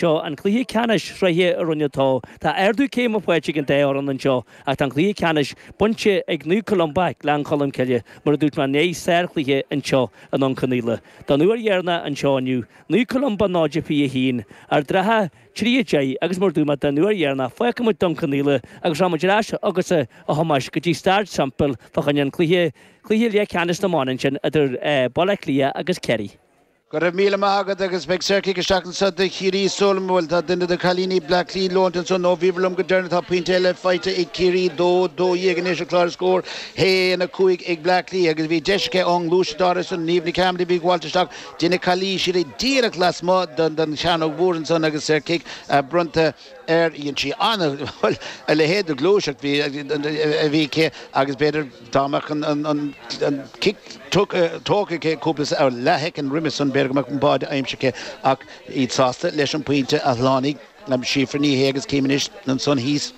Seo an cluiche ceannais sraithe i Roinn a Dó. Tá ardú céime faighte ag an dá fhoireann anseo ach tá an cluiche ceannais bainte ag Naomh Columba, Gleann Cholm Cille, mar a dúirt mé i ndiaidh sárchluiche anseo i nDún Cionnaola. Don uair dheireanach anseo inniu, Naomh Columba 0-21, Ard an Rátha 3-10 agus mar a dúirt mé don uair dheireanach fágfaidh muid Dún Cionnaola agus rachaidh muid ar ais chugatsa a Thomáis go dtí Staid Semple fá choinne an cluiche, cluiche leathcheannais na mban ansin idir Baile Átha Cliath agus Ciarraí. Go raibh míle maith agat agus beidh saorchic isteach anso do Chiarraí is dóigh liom, bhuel tá duine de cailíní Bleá Cliath leointe anso ó bhíobhair liom go deireanach tá pointe eile faighte ag Ciarraí 2, 12 anois ar chlár na scór 1, 5 ag Bleá Cliath agus bhí deis aici ón ngluais dár ais san Niamh Ní Chearmada bhí ag gabháilt isteach deineadh calaois uirthi díreach lasmuigh den den Chearnóg Mhór ansan agus saorchic bronnta ar dhein sí an, bhuel a leithéid de ghluaiseacht bhí bhí aici agus b'fhéidir Dá mbeadh an cic tógtha aici cúpla leathshoicind roimis san b'fhéidir go mbeadh an báide aimsithe ach iad sásta leis an pointe a shlánaigh Síofra Ní Shé agus cím anois ansan thíos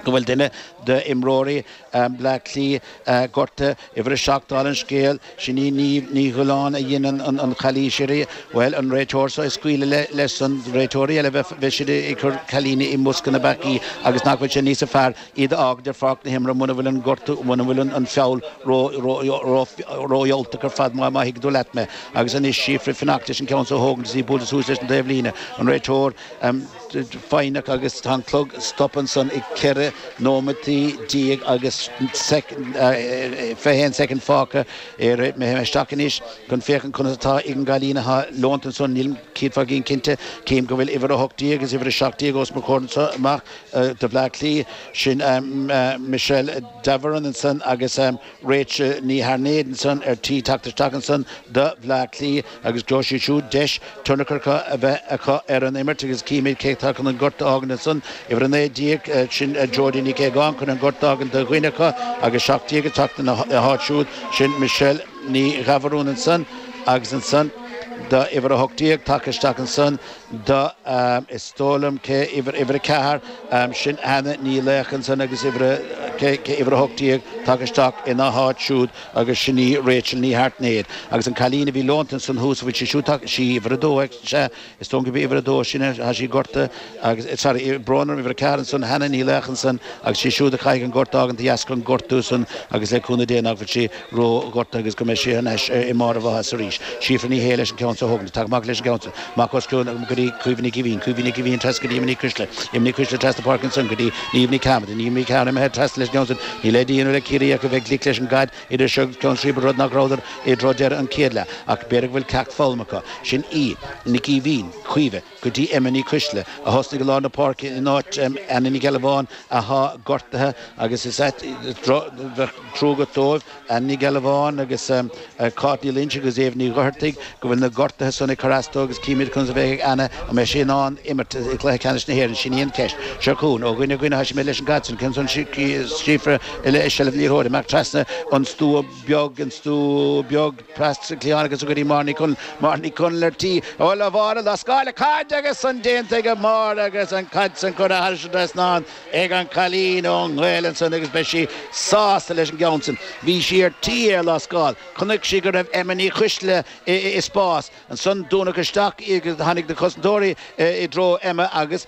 go bhfuil duine d'imreoirí Bhleá Cliath gortaithe. Uimhir a seacht, dála an scéil, sin í Ní Dhuilleáin a dhein an chalaois uirthi. Bhuel, an réiteoir so ag scaoileadh leis san. Réiteoirí eile bheadh siad ag cur cailíní i mbosca na bpeacaí agus nach bhfuil sé níosa fearr. iad a fhágaint ar pháirc na himeartha muna bhfuil an gortú, muna bhfuil an feall ródhiúltach ar fad, má thuigeann tú leat mé. Agus anois Síofra ag fanacht leis an gceann seo a thógaint is í ag bualadh suas leis an taobh líne, an réiteoir foighneach agus tá an clog stoptha ansan ag 14 nóimeataí agus 21 soicind fágtha. Éireoidh mé féin isteach anois chun féachaint conas atá ag an gcailín athá leonta ansan. Nílim céad faoin gcéad cinnte. Cím go bhfuil uimhir a hocht déag is uimhir a seacht déag os mo chomhair anso amach. do Bhleá Cliath, sin Michelle Davoren ansan agus Rachel Ní hAirtnéid ansan ar tí teacht isteach ansan do Bhleá Cliath agus gheobhaidh siad siúd deis tionchar a bheith acu ar an imirt agus cífimid cé atá chun an gort a fhágaint ansan. Uimhir 19, sin Jodi Nic Aogáin chun an gort a fhágaint do dhuine acu agus 17 ag teacht ina háit siúd, sin Michelle Ní Dhábhoireann ansan agus ansan do uimhir 18 tagtha isteach ansan, do, is dóigh liom cé uimhir, uimhir a ceathair, sin Hannah Ní Laocha ansan agus uimhir a, cé, cé uimhir a hocht déag, tagtha isteach ina háit siúd agus sin í Rachel Ní hAirtnéid. Agus an cailín a bhí leonta ansan thuas, an bhfuil sí siúd tagtha, sí uimhir a dó, sea, is dóigh liom gurb í uimhir a dó sin, tá sí gortaithe agus, sorry, brón orm, uimhir a ceathair ansan, Hannah Ní Laocha ansan agus sí siúd a chaithfidh an gort a fhágaint de dheasca an gortú san agus le cúnamh Dé nach bhfuil sí róghortaithe agus go mbeidh sí anois i mbarr a mhaitheasa arís. Síofra Ní Shé leis an gceann so a thógaint. Tagann amach leis an gceann so. Amach os cionn go dtí Caoimhe Nic Éimhín, Caoimhe Nic Éimhín trasna go dtí Emma Nic Oisdealbha, Emma Nic Oisdealbha trasna páirce ansan go dtí Niamh Ní Chearmada, Niamh Ní Chearmada thart trasna leis an gceann san. Níl le déanamh ag Ciarraí ach a bheith glic leis an gcaid idir seo agus ceann scríbe rud nach rabhadar i dtreó deireadh an chéad leath. Ach b'fhéidir go bhfuil ceacht foghlamtha acu. Sin í, Nic Éimhín, Caoimhe. go dtí Emma Ní Cuisle, a thosnaigh i lár na páirce in áit Anna Nic Ghealbháin athá gortaithe agus is ait bheadh trua agat dóibh, Anna Nic Ghealbháin agus Cáit Ní Loingsigh agus Aobh Ní Dhochartaigh, go bhfuil na gortuithe san ag cur as dó agus címid conas a bheidh ag Anna, an mbeidh sí in ann imirt i gCluiche Ceannais na hÉireann, sin í an cheist. Seo chugainn, ó dhuine dhuine, thá sí imithe leis an gcaid san, ceann san Síofra i seilbh na liathróide, amach trasna an stua beag, an stua beag, Bhleá Cliath agus é go dtí Máire Ní Chonaill. Máire Ní Chonaill ar tí a dhul le Mháire lascáil caid agus san déanta ag Máire agus an chaid san curtha thairis an trasnán ag an cailín ó Na Gaeil ansan agus beidh sí sásta leis an gceann san. Bhí sí ar tí é a lascáil. Chonaic sí go raibh Emma Ní Chuisle i spás. Ansan dúnadh isteach í agus tháinig na cosantóirí i dtreo Emma agus.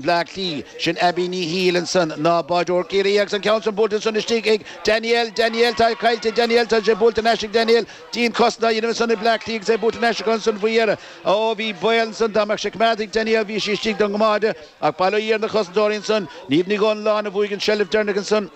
Bhleá Cliath. Sin Abbie Ní Shiail ansan, ná báireoir Ciarraí agus an ceann san buailte ansan istigh ag Danielle, Danielle, tá sé caillte, Danielle, tá sé buailte thar n-ais ag Danielle, dianchosaint á dhéanamh ansan ag Bleá Cliath agus é buailte thar n-ais acu ansan faoi dheireadh. Ó, bhí baol ansan, dá mbeadh sé coimeádta ag Danielle, bhí sí istigh don gcoimeád, ach bail ó Dhia ar na cosantóirí ansan, Niamh Ní Dhonnaláin a bhuaigh an seilbh deireanach ansan,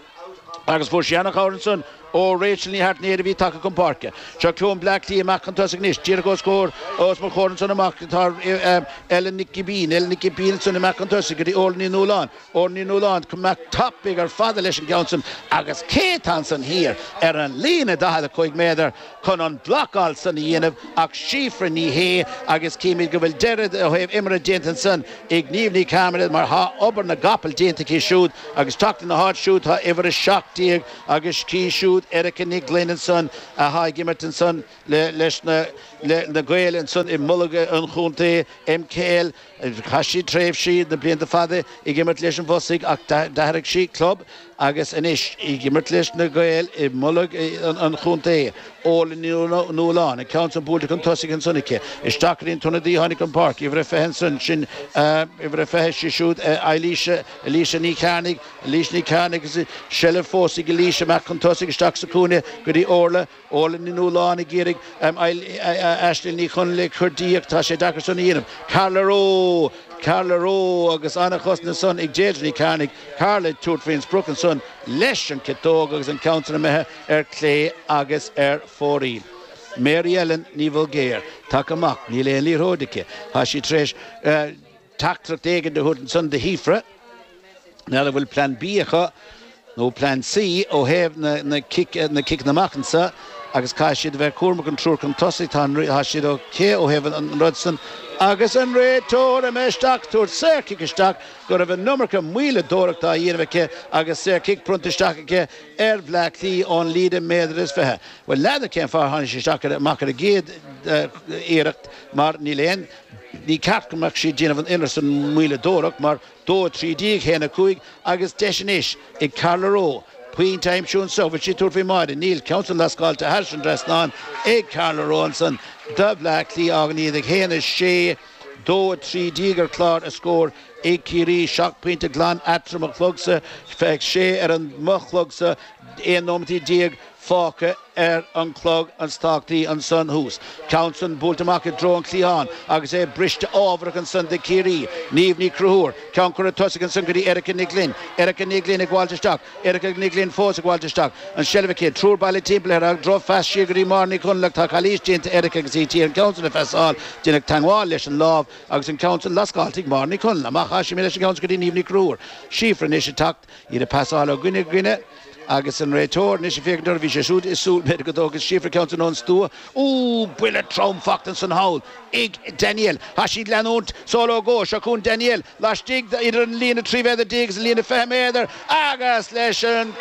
Agus fuair sí an-chabhair ansan ó Rachel Ní hAirtnéir a bhí tagtha chun páirce. Seo chugainn Bleá Cliath amach chun tosaigh anois. Díreach os comhair, os mo chomhair ansan amach atá Ellen Nic Giobín. Ellen Nic Giobín ansan amach chun tosaigh go dtí Órla Ní Nualláin. Órla Ní Nualláin chomh mear tapaidh ar fad leis an gceann san. Agus cé atá ansan thiar ar an líne, 45 méadar, chun an blocáil san a dhéanamh ach Síofra Ní Shé agus címid go bhfuil deireadh ó thaobh imeartha déanta ansan ag Niamh Ní Chearmada mar tá obair na gcapall déanta aici siúd agus teacht ina háit siúd tá uimhir 17 agus aici siúd Erica Nic Ghloinn ansan atá ag imirt ansan leis na Gaeil ansan i mbolg an chontae MKL Chaith sí tréimhsí na blianta fada ag imirt leis an bhFosaidh ach d'athraigh sí club agus anois í ag imirt leis na Gaeil i mbolg an chontae. Órla Ní Nualláin, an ceann san buailte chun tosaigh ansan aici. Isteach go dtí an t-ionadaí a tháinig chun páirce, uimhir a 20 ansan, sin uimhir a 20, sí siúd Eilís, Eilís Ní Chearnaigh, Eilís Ní Chearnaigh agus seilbh fós ag Eilís. Amach chun tosaigh, isteach sa chúinne go dtí Órla. Órla Ní Nualláin ag iarraidh Aislinn Ní Chonghaile a chur di ach tá sé deacair san a dhéanamh. Carla Rowe! Carla Rowe! Agus an-chosaint ansan ag Deirdre Ní Chearnaigh, Carla ag tabhairt faoin sprioc ansan leis an ciotóg agus an ceann san imithe ar clé agus ar fóraoil. Mary Ellen Ní Bhulgaeir, tagtha amach, níl aon liathróid aici, tá sí tar éis Teachtaireacht éigin a thabhairt ansan do Shíofra, mar a bhfuil Plean B acu, nó Plean C, ó thaobh na ciceanna amach ansan, agus caithfidh siad a bheith cúramach an triúr chun tosaigh, tá siad ok ó thaobh an rud san, agus an réiteoir imithe isteach ag tabhairt saorchic isteach, go raibh an iomarca maoileadóireachta á dhéanamh aici agus saorchic bronnta isteach aici ar Bhleá Cliath ón líne méadar is fiche. Bhuel, n'fheadar cén fáth a tháinig sí isteach amach ar an gcéad iarracht, mar níl aon. Ní ceart go mbeadh siad ag déanamh an oiread san moilleadóireacht mar dó 13 haon 5 agus deis anois ag Carla Rowe pointe a aimsiú anseo. Bhfuil sí ag tabhairt faoin mbáire? Níl. Ceann san lascáilte thairis an dtrasnán ag Carla Rowe ansan do Bhleá Cliath fágann iad ag haon 6, 2, 13 ar chlár na scór ag Ciarraí. Seacht pointe glan eatarthu ar mo chlogsa. Sé ar an mo chlogsa. 11 nóimeataí. fágtha ar an chlog an stoc dí ansan thuas. Ceann san buailte amach i dtreo an chliatháin agus é briste ámharach ansan do Chiarraí. Niamh Ní Chonchúir, ceann curtha chun tosaigh ansan go dtí Erica Nic Ghlinn. Erica Nic Ghlinn ag gabháilt isteach. Erica Nic Ghlinn fós ag gabháilt isteach. An seilbh aici. Triúr bailithe timpeall uirthi. Drochphas siar go dtí Máire Ní Chonaill ach tá calaois déanta ag Erica agus í d'iarraidh an ceann san a phasáil. Deineadh teangmháil leis an lámh agus an ceann san lascálta ag Máire Ní Chonaill. Amach as sin leis an gceann san go dtí Niamh Ní Chonchúir. Síofra anois ag teacht. Iad ag pasáil ó dhuine go duine agus an réiteoir anois ag féachaint orthu. Bhí sé siúd ag súil, b'fhéidir, go dtógfadh Síofra ceann san ón stua. Ó! Buille trom fachta ansan thall ag Danielle. Tá sí ag leanúint sall ó gcomhar. Seo chugainn Danielle laistigh de idir an líne trí mhéadar déag agus an líne fiche méadar agus leis an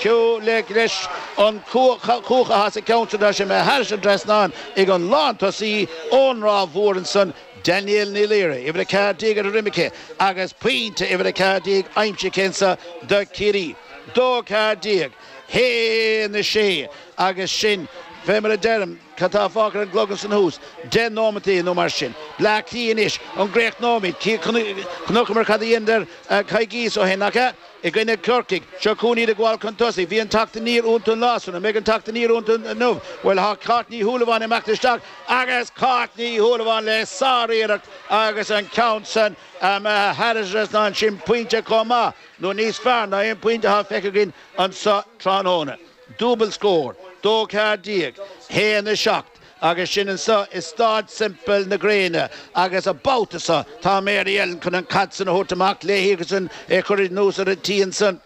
leis an cuach a has a ceann san tá sé imithe thairis an trasnán ag an lántosaí ón Ráth Mhór ansan Danielle Ní Laoire, uimhir 14 ar a droim aici agus pointe uimhir 14 aimsithe aici anseo do Chiarraí, 2-14, 1-6, agus sin, fé mar a deirim, cad tá fágtha ar an gclog ansan thuas, deich nóimeataí nó mar sin. Bleá Cliath anois, an gcríochnóimid? Chonaiceamar cad a dheineadar coicíos ó shin, nach ea? i gcoinne Corcaigh. Seo chugainn iad ag gabháil chun tosaigh. Bhí an teacht aniar iontu an lá san. An mbeidh an teacht aniar iontu inniu? Bhuel, tá Cáit Ní Shúilleabháin ag imeacht isteach. Agus Cáit Ní Shúilleabháin le sár-iarracht agus an ceann san imithe thairis an dtrasnán ansin pointe chomh maith, nó níos fearr ná aon phointe atá feicthe againn anso tráthnóna. Dúbail scór dó ceathair déag, haon a seacht, agus sin anso i Stáid Semple na Gréine agus an babhta so tá Mary Ellen chun an caid san a thabhairt amach léi agus é a chur anuas ar an tí ansan.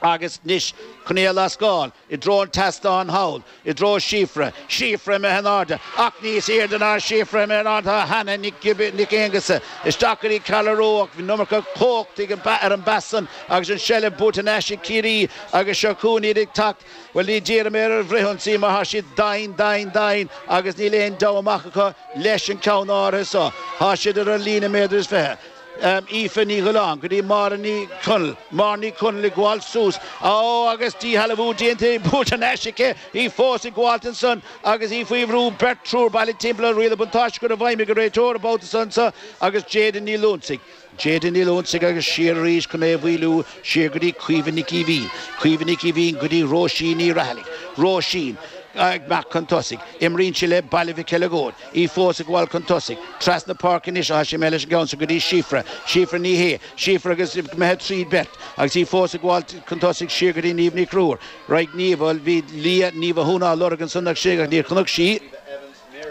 Agus anois, chun í a lascáil, i dtreo an tseastáin thall, i dtreo Síofra, síofra imithe in airde, ach níos airde ná síofra imithe in airde atá Hannah Nic Aongusa. Isteach go dtí Carla Rowe, bhí an iomarca cumhachta ar an bpas san agus an tseilbh buaite thar n-ais ag Ciarraí agus seo chugainn iad ag teacht. Bhuel, ní déarfaidh mé ar an bhfrithionsaí mar tá siad doimhin, doimhin, doimhin agus níl aon deabhadh amach acu leis an ceann áirithe seo. Tá siad ar an líne méadair is fiche. Aoife Ní Dhioláin go dtí Máire Ní Chonaill, Máire Ní Chonaill ag gabháil suas, á agus díshealbhú déanta di, buaite thar n-ais aici, í fós ag gabháilt ansan agus í faoi bhrú, beirt, triúr bailithe timpeall uirthi, riail an bhuntáiste curtha i bhfeidhm ag an réiteoir an babhta so anso agus Jayden Ní Loinsigh, Jayden Ní Loinsigh agus siar arís chun é a mhoilliú, siar go dtí Caoimhe Nic Aoibhín, Caoimhe Nic Aoibhín go dtí Róisín Ní Rathaille, Róisín ag imeacht chun tosaigh, imríonn sí le Baile Mhic Eileagóid. í fós ag gabháil chun tosaigh. Trasna páirce anois a thoisigh mé leis an gceann san go dtí Síofra, Síofra Ní Shé, Síofra agus imithe trí bheirt, agus í fós ag gabháil chun tosaigh siar go dtí Niamh Ní Chonchúir. Raight Niamh, bhuel, bhí Lia Ní Mhathúna á lorg ansan istigh, níor chonaic sí í,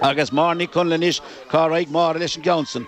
agus Máire Ní Chonaill anois, cá raghaidh Máire leis an gceann san?